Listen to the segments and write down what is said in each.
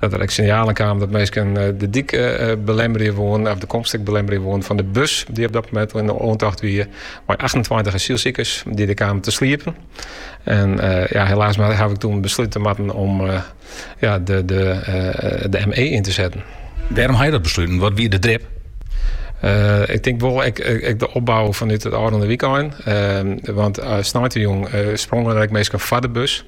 Dat der ek sinjalen kamen dat minsken de dyk belemmerje woenen, of de komst ek belemmerje woenen fan de bus dy't op dat moment al yn de oantocht wie, mei achtentweintich asylsikers dy't der kamen te sliepen. En ja, helaas mar haw ik toen beslute moatten om ja, de, de, de ME yn te setten. Wêrom ha je dat besluten? Wat wie de drip? Eh, ik tink wol ek, ek, de opbou fanút it ôfrûne wykein. Ehm, want uh, eh, sneintejûn uh, eh, sprongen der ek minsken foar de bus.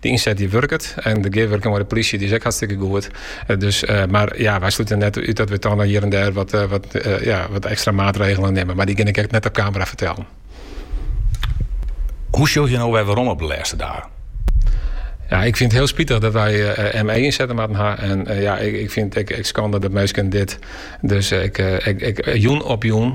De ynset dy wurket en de gearwurking mei de plysje dy is ek hartstikke goed. Dus, mar ja, wy slute net út dat we toch noch hjir en dêr wat, wat, ja, wat ekstra maatregelen nimme. Mar dy kin ik echt net op kamera fertelle. Hoe sjoch je no wer werom op de lêste dagen? Ja, ik fyn it hiel spitich dat wy uh, eh, eh, ME ynsette moatten ha. En eh, ja, ik, ik fyn it ek skande dat minsken dit dus ek, ek, ek, jûn op jûn